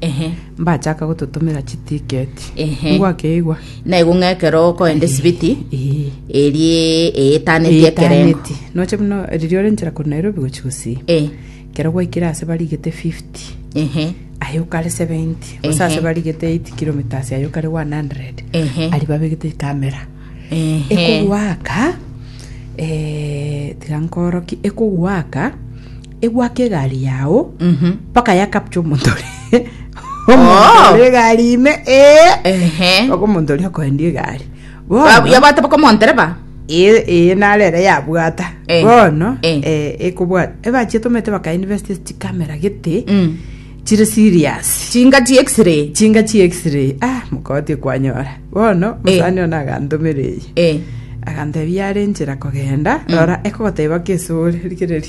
Ehe. mbachaka gototomera chitiketi Ehe. ngwakeigwa na igo ng'a ekero okoenda esibiti Ee. erie eetaneti ekerengo Etaneti. noche buna riria ore nchera korwa nairobi gochi gusii Eh, kero gwaikire ase barigete 50 ehe aye okare 70 gose ase Ehe. barigete 8 kilometres aye okare 100 Ehe. ari babegete ekamera ehe ekogwaka eh, tiga nkoroki ekogwaka egwake egari yao mpaka yakapcha omonto ore- omonto Oh. ore egari ime ee Ehe. mpaka omonto oria okoendia egari Ba- bono yabwate baka omontereba ee ee narere yabwata Eh, bono eh. eh, ekobwata ebachi etomete bakainveste chikamera gete Mm. chire serious chinga chi x-ray chinga chi x-ray ah mokoti kwanyora bono mosani ona agantomera eye Eh. agantebia are nchera kogenda rora ekogoteba kesore rikereri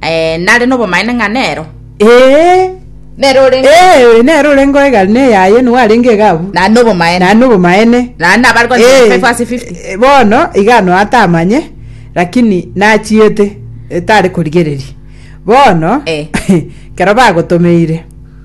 Eh, nare nobomaene ng'a nero. Ee, Nero orenge. ee, nere orenge oye gari neyaye, nigo arenge iga abwo. Na nobomaene. Naye nobomaene. Na nabare kwa Eh, 25 ase 50. eh, bono iga ano atamanye lakini nachiete etare korigereria bono Eh. kero bagotomeire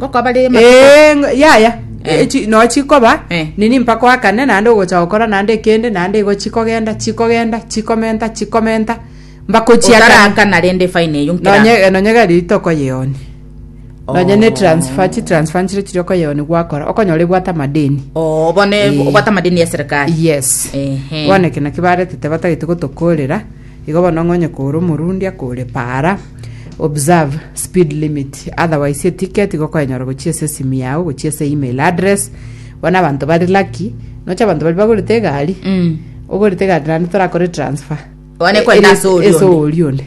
Ngokoba reye matuko. Eh, ng- yaya Eh. Echi- no chikoba Eh. nini mpaka oakane naende ogocha gokora naende ekende naende igo chikogenda chikogenda chikomenta chikomenta mbakochiakana Otarakana rende fine eyo nkera. nonye nonye gari rito okoyeoni nonye ne transfer chi transfer nchire chiri okoyeoni gwakora okonyora ebwata amadeni Oh, bone Eh. obata madeni ya serikali. yes Ehe. bono eke naki baretete batagete gotokorera Igo bono ng'onye kore omorundi akore para, observe speed limit, otherwise eticket igo okoenyora gochia ase esimi yao gochia ase email address. Bono abanto bari lucky, nocha abanto bari bagorete egari, Mm. ogorete egari naende torakore transfer. One E- kwenda ere- ase oria ase onde. oria onde.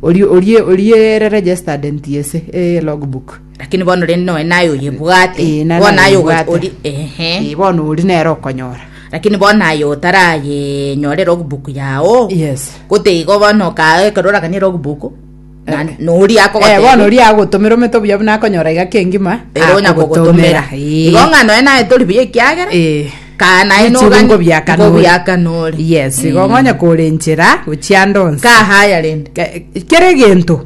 Oria- oria- oria ere registered NTSA, eh, logbook. Lakini bono rende nonya naye oyebwate, Eh, nana bono aye ogo- oyebwate. ori- ehe. Eh, bono ori nere okonyora lakini bono aye otarayenyore logbook yao yes gote igo bono okae ekero oraganie logbook na- Eh. nori Eh, bono akogotebia ori agotomera omete obuya buna akonyora iga kengima ere onya kogotomera Eh. igo ng'a noe naye tori buya ekiagera Eh. kaa naye Echi nogani- bingo bia kanori. bingo bia kanori. yes igo Mm. ngonya kore enchera gochia ndonsi kahaya rende Ke- kere egento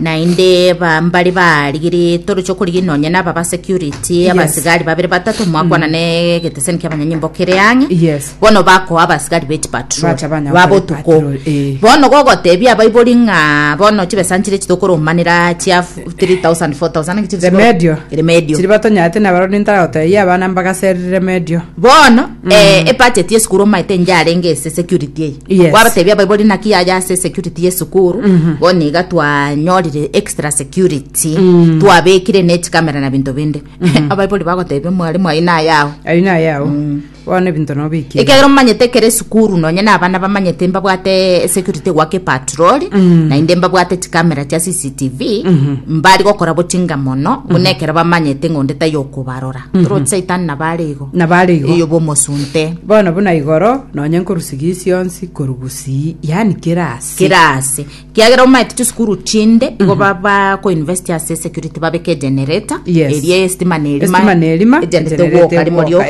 Naende ba- mbare baarigire toroche okorigini nonye naba ba security abasigari babere batato mwakwana Mm. ne egeteseni kiabanyanyimbo kere ang'e Yes. bono bakoa abasigari beti patrol Bacha banya gokora babotuko patrol, eh. bono gogotebia abaibori ng'a bono chibesa nchire chitokoromanera chia f- 3000 4000 naki chiri Remedio. remedio Chiri batonyarete nabarori ntaragotebia abana mbagaserire remedio. bono eh, mm. ebudget yesukuru omaete enje arenge ase security eye yes. wabatebia abaibori naki yaya ase security yesukuru mm -hmm. bono iga twanyorire extra security mm. twabekire nechikamera na binto binde mm -hmm. abaibori bagotebia mwalimu ayi nayao ayi nayao mm bono ebinto nobikire ekero momanyete ekero esukuru nonye na abana bamanyete mbabwate security gwake patroli mm -hmm. naende mbabwate chikamera chia cctv mm -hmm. mbari gokora bochinga mono buna mm -hmm. ekero bamanyete ng'onde tayokobarora Rod Satan nabo are igo. Nabo are igo. Eyo bomosunte. Bono buna igoro nonye nkorusiga isionsi koru gusii yani kera ase. Kera ase. Kiagera omaete chisukuru chinde mm -hmm. igo mhm. baba ko invest ase security babeke generator. Yes. Erie estima ne elima. Estima ne elima. Egenderete woka limo lio.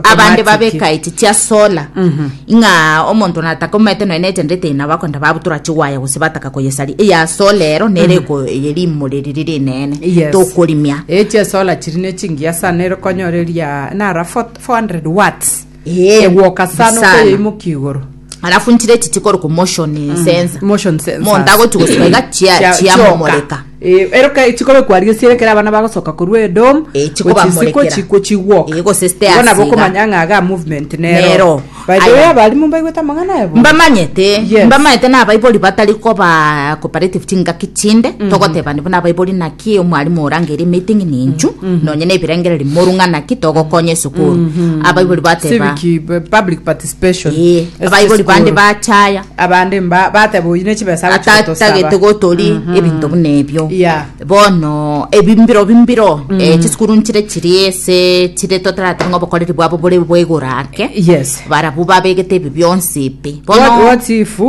Abande babeka iti tia solar. Mm -hmm. Ng'a omonto natakomete nonya nechandete eye nabo akonda babutora chigwaya gose bataka koyesaria eye ase olero nere eko eye rimori riria rinene Yes. tokorimia Eh, chiesola chiri ne chingiya sana nero konyoreria nara 400 watts Eh, egwoka sana sana. okoyeimoki igoro alafu ntire echi chikore ku motion sensor motion sensors. monto agochi gosiba iga chia- Chia- chiamomoreka Ee, eroka echikobe kwaria siere kera abana bagosoka korwa Edom Ee, chikobamorekera. chiko chigwoka Ee, gose site Igo nabo asiga. okomanya ng'a aga movement nero Nero. by the way Aya. abarimu mbaigwete amang'ana abo mbamanyete Yes. mbamanyete na abaibori batari koba cooperative chingaki chinde togoteba nibo na abaibori naki omwarimu orangeri meeting ninchu nonye na ebirengereri morung'a naki togokonya esukuru abaibori bateba Civic, eh, public participation Eh, Ase abaibori bande esukuru. bachaya abande mba bateba oyi ne chibesa agochi Ata- gotosaba." tagete gotori Mhm. ebinto buna ebio Yeah. bono ebimbiro bimbiro eh, chisukuru nchire chiri ase chire totarate ng'a obokoreri bwabo bore bwaigoro ake yes barabwo babegete ebi bionsi ebi what, bono what if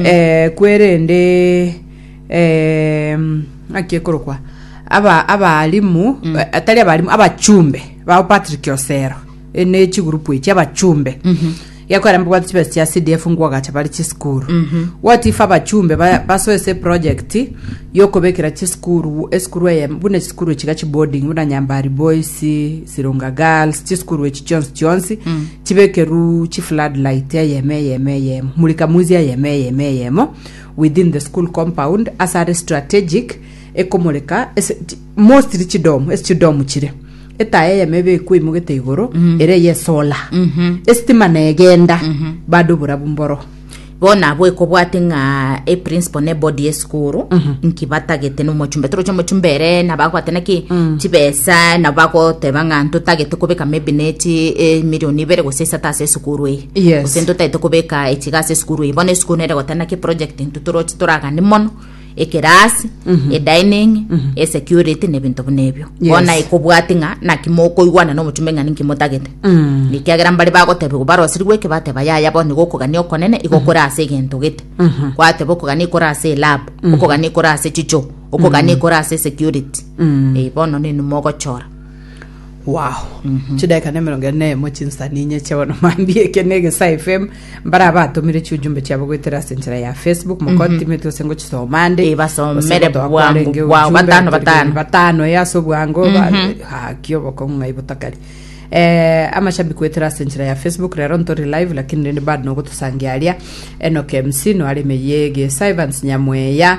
eh, kwerende eh, ng'aki ekorokwa aba abalimu eh, atari abalimu abachumbe bao patrick osero ene chigurupu echi abachumbe Gekorembigwa chibesa chia CDF ngoagacha bare chisukuru gotifa abachumbe ba- basoe ase eproject yokobekera chisukuru esukuru eye buna chisukuru chiga chiboarding buna nyambari boys sirunga girls chisukuru echi chionsi chionsi chibekeru chiflood light eyemo eyemo eyemo murika mwizi eyemo eyemo eyemo within the school compound ase are strategic ekomoreka ase- chi- Mostly chidomu, ase chidomu chire, etaya eyemo ebe ekwa eimogete igoro, ere eye esola. Esitima negenda, bado oborabu mboro. bono abwo ekobwate ng'a eprinciple ne body yesukuru nki batagete na omochumbe toroche omochumbe ere nabo agote naki chibesa nabo bagoteba ng'a ntotagete kobeka maybe ne chi emilion ibere gose isato ase esukuru eye Yes. gose ntotagete kobeka echiga ase esukuru eye bono esukuru nere egoteba naki eproject intwe toroche toraganie mono ekerasi Mhm. edining Mhm. esecurity na ebinto buna ebio Yes. bono naye kobwati ng'a naki mokoigwana na omochumba ing'ani inki motagete Mm. ekiagera mbare bagotebigwa barosirigwe eke bateba yaya bono nigo okogania okonene igo kore ase egento gete Mhm. gwateba okogania kore ase elab okogania kore ase chicho okogania kore ase security Mm. Eh, bono nini mogochora Waah chidaika na emerongo ene na eyemo chinsa ninyeche bono mambia eke na egesae fm mbare abatomire chiujumbe chiabo goetera ase enchera ya facebook mokotimeti ase ngochisoma ande Eh, basomere Ase gotoa bwango kwarenge bwao, ujumbe, batano, batari- batano. batano ya ase obwango haki obokong'u ng'ai botakari Eh, amashabiki goetera ase enchera ya facebook rero ntori live lakini rende bado nogotosangia aria enoke mc noare emeye gesa evans nyamweya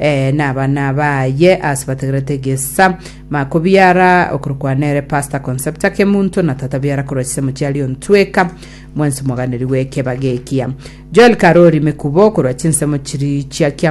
Ee, nabana baye ase bategerete egesa. Mako biara okorokwa nere Pastor Concepta Kemunto na tata biara korwa chisamochi aria ontweka mwensi moganeri w'ekeba gekia. Joel Karori Mekubo korwa chinsemo chiri chia Kiango